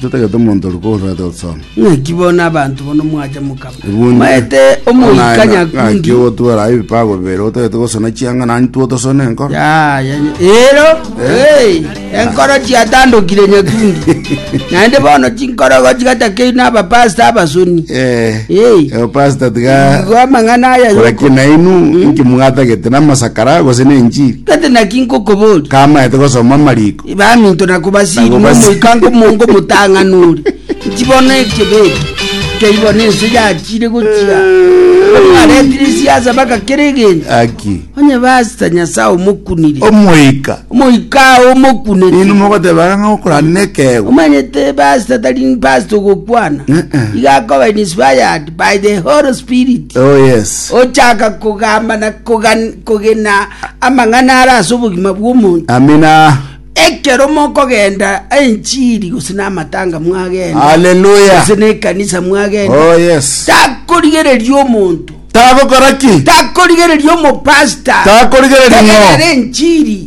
Totagete omonto oria kogosareta gosoma. Naki bono abanto bono mwacha mokaba Ebundi, maete omoika nyakundi. ogotwera aye ebipago bibere otagete gosona chianga nani two tosone enkoro Ya, ya, ya. Ero, hey, enkoro chiatandokire nyakundi. Naende bono chinkoro gochigatakeiri n'abapasta abasoni. Eh, Hey. eh, pastor tiga Igo amang'ana aya kora yoko. kinainu nki mwatagete namasakara gose nenjiri Kate naki nkokobori. kamaete gosoma amariko Baminto na kobasiiri Nabo basi- nomoikango omonge omotang'ani ore, inchi bono ekebeke kei bono ense yachire gochia. Omwaretire esiasa baka kera egento, Aki. onye basta Nyasae omokunire. Omoika. Omoika ao omokunete. Inwe mogoteba ng'a okorana nekego. Omanyete basta tari basta ogokwana. Eh, eh. Iga akoba in inspired by the Holy Spirit. Oh yes. Ochaka kogamba na kogan- kogena amang'ana ara ase obogima bw'omonto. Amina. Ekero mokogenda enchiri gose namatanga mwagenda. Hallelujah. Gose nekanisa mwagenda. Oh yes. Takorigereria omonto. Tagokora ki? Takorigereria omopasta. Takorigereria ng'o? Tegerera enchiri.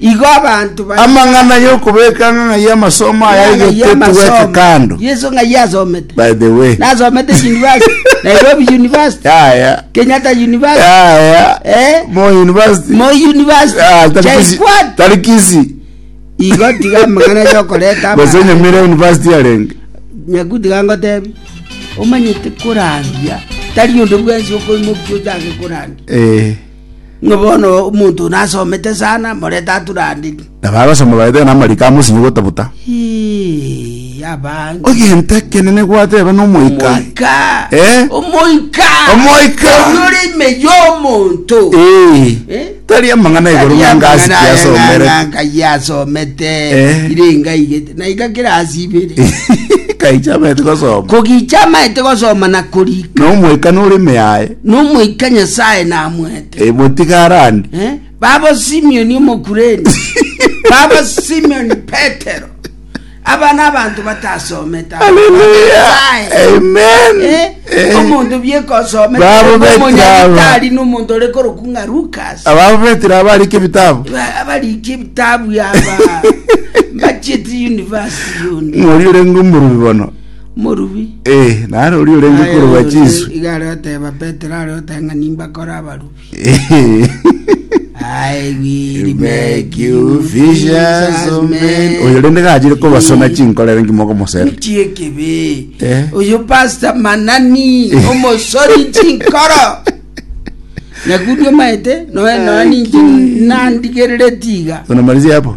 Igo abanto baria Amang'ana y'okobeka ang'ang'a y'amasomo aya Amang'ana aigete y'amasomo. tugweke kando. Yesu ng'ai asomete? By the way. Nasomete university. Nairobi University. Yaya. Kenyatta University. Yaya. Eh? Mo university. Moi University. Ah, tari Kisi- Jaikwat. Tari kisi. Igo tiga amang'ana yokoreta ama- Gose Nyamira university yarenge. nyakuti gangotebi omanyete korangia tari onde bwensi okoimokia ochake korangia Eh. Ng'a bono omonto one asomete sana, morete ature ande. Nabagosoma baete ng'a namariko amosinye gotabuta. Ii, abange. Egento ekenene gwateba nomoika. Omoika. Eh? Omoika. Omoika. Oyio ore ime y'omonto. Ee. Eh? Tari amang'ana igoro ng'a ngasi kiasomere. Ngai asomete. Eh. Ire ngai gete. Na iga kera asibere. Kaicha bete gosoma. Kogicha amaete gosoma na korika. Nomoika nore ime yaye. Nomoika Nyasae namoete. Eh, motigarane. Eh, babo Simioni Omokureni, babo Simioni Petero, aba n'abanto batasomete omonto biekosometari n'omonto ore koroku ng'a Lukas ababo betire abarike ebitabu abarike ebitabu aba bachieti university yoni ng'ori ore ng'omorubi bono morubi Eh, nare oria orenge Aye korwa oyo chisu. iga are oteba petero are oteba ng'a nimbakore abarubi I will make you fishers of men. oyo rende gachire kobasona chinkorere ngimoko mosere Nti ekibi Eh. oyo pasta manani omosori chinkoro nakundi omaete noe noe ninche nandigerere tiga tonamarisia hapo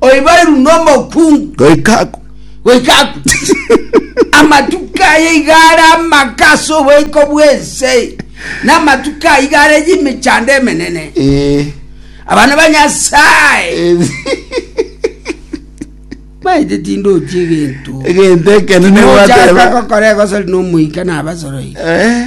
oibairu nomokungu Goika aku. goika aku amatuko aye igare amaka ase oboiko bw'ense na amatuko aye igare y'emechando emenene Eh. abana ba nyasaye Eh. maete tindochi egento Egento ekenene Nochaka gwateba. gokora egosori nomoika nabasoroi Eh.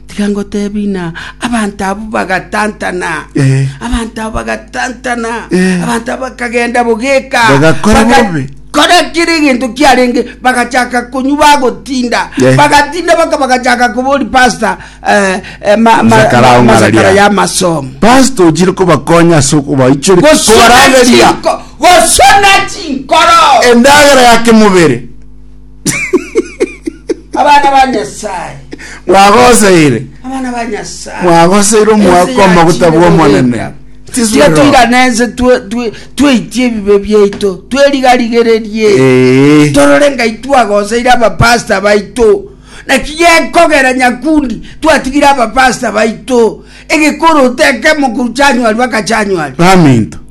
Tiga ngotebi ng'a abanto abwo bagatantana, Eh. abanto abwo bagatantana, Eh. abanto abwo bakagenda bogeka, Bagakora bobe. kora kiri eginto kiarenge bagachaka konywa bagotinda Eh. bagatinda baka bagachaka kobori pasta eh, eh, ma- ma- Masakara ma- ong'araria. masakara ya masomo pastor ochire kobakonya ase okobaichori gosona kobarangeria chinko- gosona chinkoro endagera ya kemobere abana ba nyasaye Mwagoseire. abana ba nyasaye Mwagoseire omwaka Ense omaguta yachire bw'Omonene. goika. Tiswe Tiga roho. tuigane ense twe- twe- tweitie ebibe biaito twerigarigererie Ee. torore ngai twagoseire abapasta baito naki gekogera nyakundi twatigire abapasta baito egekoroto ekemo korwa chanywari baka chanywari Baminto.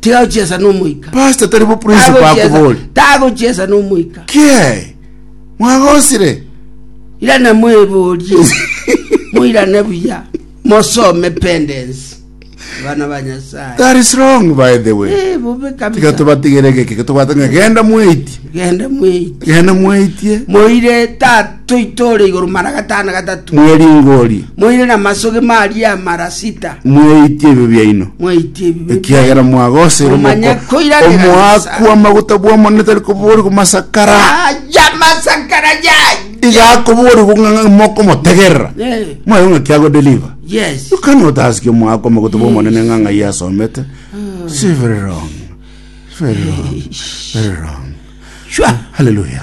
Tigagochiesa n'omoika. Pastor tari bo principle Tagochiesa- akobori. Tagochiesa n'omoika. Kiee. Mwagosire. Irana mweborie. Moirane buya. Mosome pendensi. Bana ba Nyasaye. That is wrong by the way. Eh, bobe Tiga kabisa. tubatigere geke tobwate ng'a genda mweitie. Genda mweiti. Genda mweitie. Moire tata. Toitore igoro mara gatano gatato. Mweringori. Moire namasoge maria amara sita. Mweitie ebibe biaino. Mweitie ebibe Ekiagera mwagoseire omoko. Omoakwa amaguta bw'Omonene tari koborigwa masakara. Aya masakara yaye igakoborigwa ng'a mokomotegerera mwayo ng'a kiagodeliva ukana otasikia omwako omogoto bw'omonene ng'a ng'ai asomete hmm. si very wrong very wrong very wrong haleluya